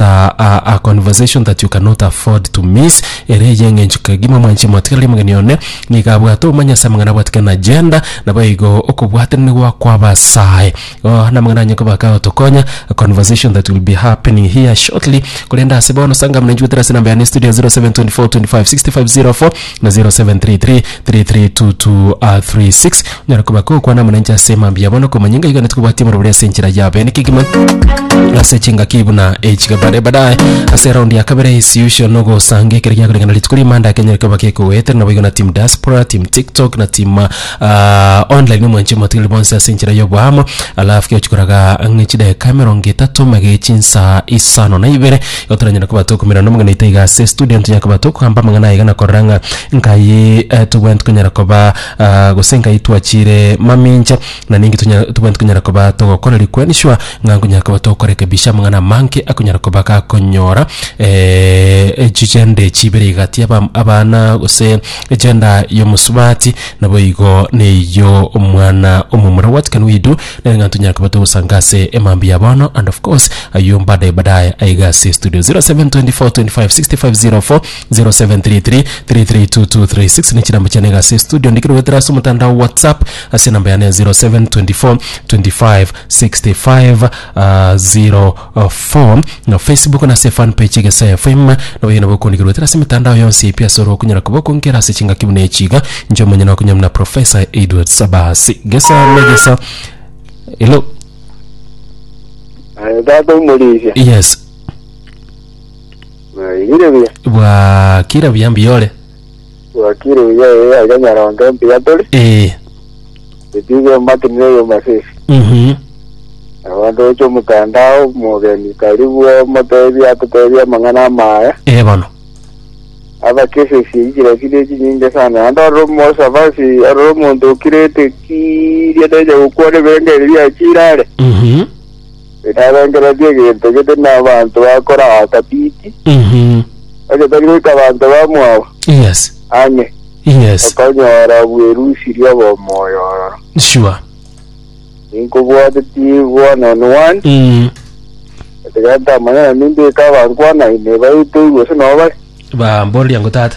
a, a, a conversation that you cannot afford to miss ere eye eng'encho kegima mwanche mwatigereri omogeni one niga abwate obomanya ase amang'ana abwatike na agenda nabo igo okobwatanani gwakwa abasae oh, namang'ana anye koba kagotokonya a conversation that will be happening here shortly korende ase bono sanga mnanchwetera ase namba yane studio 0724256504 na 0733332236 onyare koba kogokwana amo nainche ase emambia yabo na okomanya ngaiga naende kobwatia omorobori ase enchera yabe niki kegima ase chingaki buna echiga bare badaye ase eraundi ya kabere isiusio na ogosanga ekero giakoreng'ana na rituko rimanda kenyare koba gekogoetera naboigo na team diaspora team tiktok na team ah, online na omwanchi omotigari bonsi ase enchera ya oboamo alafu gegochia koraga ang'e chidakika emerongo etato mage chinsa isano na ibere Igo toranyare koba tokomerana n'Omogeniito iga ase estudio, ntonyare koba tokogamba amang'ana aya iga na korora ng'a nkai tobwenerete konyara koba gose nkai twachiire mamincha, na ninki tonya tobwenerete konyara koba togokora rikweni sure ng'a nkonyara koba tokorekebisha amang'ana amange akonyara koba gakonyora chichende chibere iga gati yaba abana gose egender y'omosubati, naboigo neyio omwana omomura. What can we do? Nere ng'a ntunyare koba togosanga ase emambia ya bono and of course ayio mbadaye badaye aiga ase studio 0724256504 0733332236 ne chirambe chiane iga ase studio ndikire goetera ase omotandao whatsapp ase enamba yane ya 0724256504 Four, na Facebook nase fan page Egesae FM. Noboiyo nabo okondigerwa etera ase emetandao yonsi pi ase oro okonyara koba okonkera ase chingaki buna echi iga, inche omonyene okonye buna Professor Edward Sabasi. Gesa na gesa. Hello. Eh, Tata omorisia. Yes. Eh, Igire buya. Bwa kira buyambi yore. Wakiri uya ee aiga nyarondo mbuya tore. Ee. Ebigo emakinire yomasesi. Mhm. Abanto oche omotandao mogeni tari bwe motebia atotebia amang'ana amaya. Ee bono. Abakesesi eikira kire chinyinge sana. Ande ororo mosabasi ororo omonto okirete kiria teja gokwana ebirengererio biaye chirare. Mhm. Tinarengereria egento gete nabaanto bakora agatiti, Mhm. bagetari goika abanto bamwabo Yes. ang'e, Yes. bakonyora bwerusirie obw'omoyo ororo. Sure. Ninkobwateti one on one, Mm. ekiagera ntamanyana ninde eka abankwanaine baite igwe ase nao bare. Ba mboria ngo tata.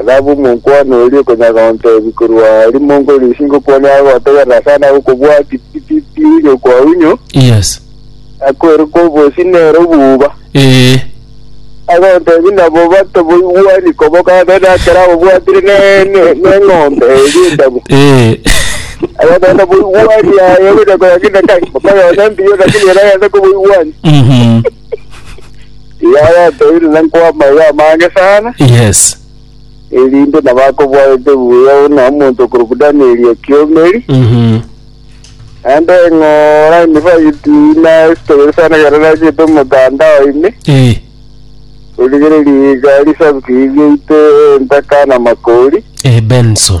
Ethabu omokuani oria okonyara gontebia korwa rimonko ri'isi ngokwania agotegerera ase ane agokobua titititi oinywe kwa oinywe, Yes. akoire kwa obosi nere obuba. Ee. Agontebia nabo bato boigwani kobokana nere ekero ababwatire ne- ne- neng'ombe eria endabu. Ee. Agontebia nabo boigwani aye ogocha koyang'ina kai, mokoyone mbiya lakini ere agende koboigwani. Mhm. Yaya atoire na nkwama eye amange sana, Yes. erinde nabo akobwarete buya buna omonto okorokwa Danieli ekiomeri, Mhm. naende eng'ora emifagiti ina esitogete sana ekero nachete omotandao ime, Eh. origereria iga risabuki riaito entaka na makori, Eh, Benson.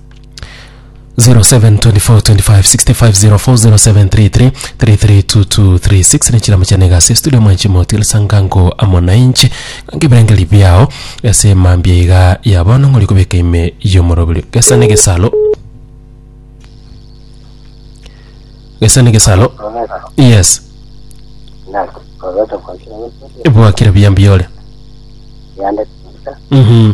07242565040733332236 nechiramo chiane gase studio mwanchi motile sangango amo nainche ange birengeri biao ase mambia iga ya bono ng'ori kobeka ime yomorobiri gesa ne gesalo gesa ne gesalo yes bwakire buya mbuya ore yande mhm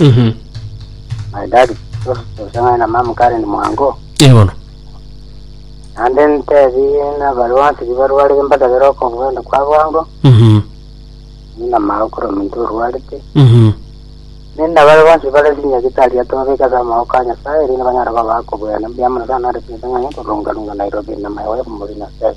Mhm. My daddy, osang'ane na mama Karen mwango. Ee bono. Naende ntebie nabarwati bibarwarire mbadabere okobwenda kwa bwango, Mhm. ninamao kora ominto orwarete. Mhm. Nenda bare bonsi bare sinyagitari atobabeka ase amaboko a Nyasae, rinde banyare koba akobwene mbuya mono sana nare chinsa ng'enye korunga-runga Nairobi na my wife Murina Stella.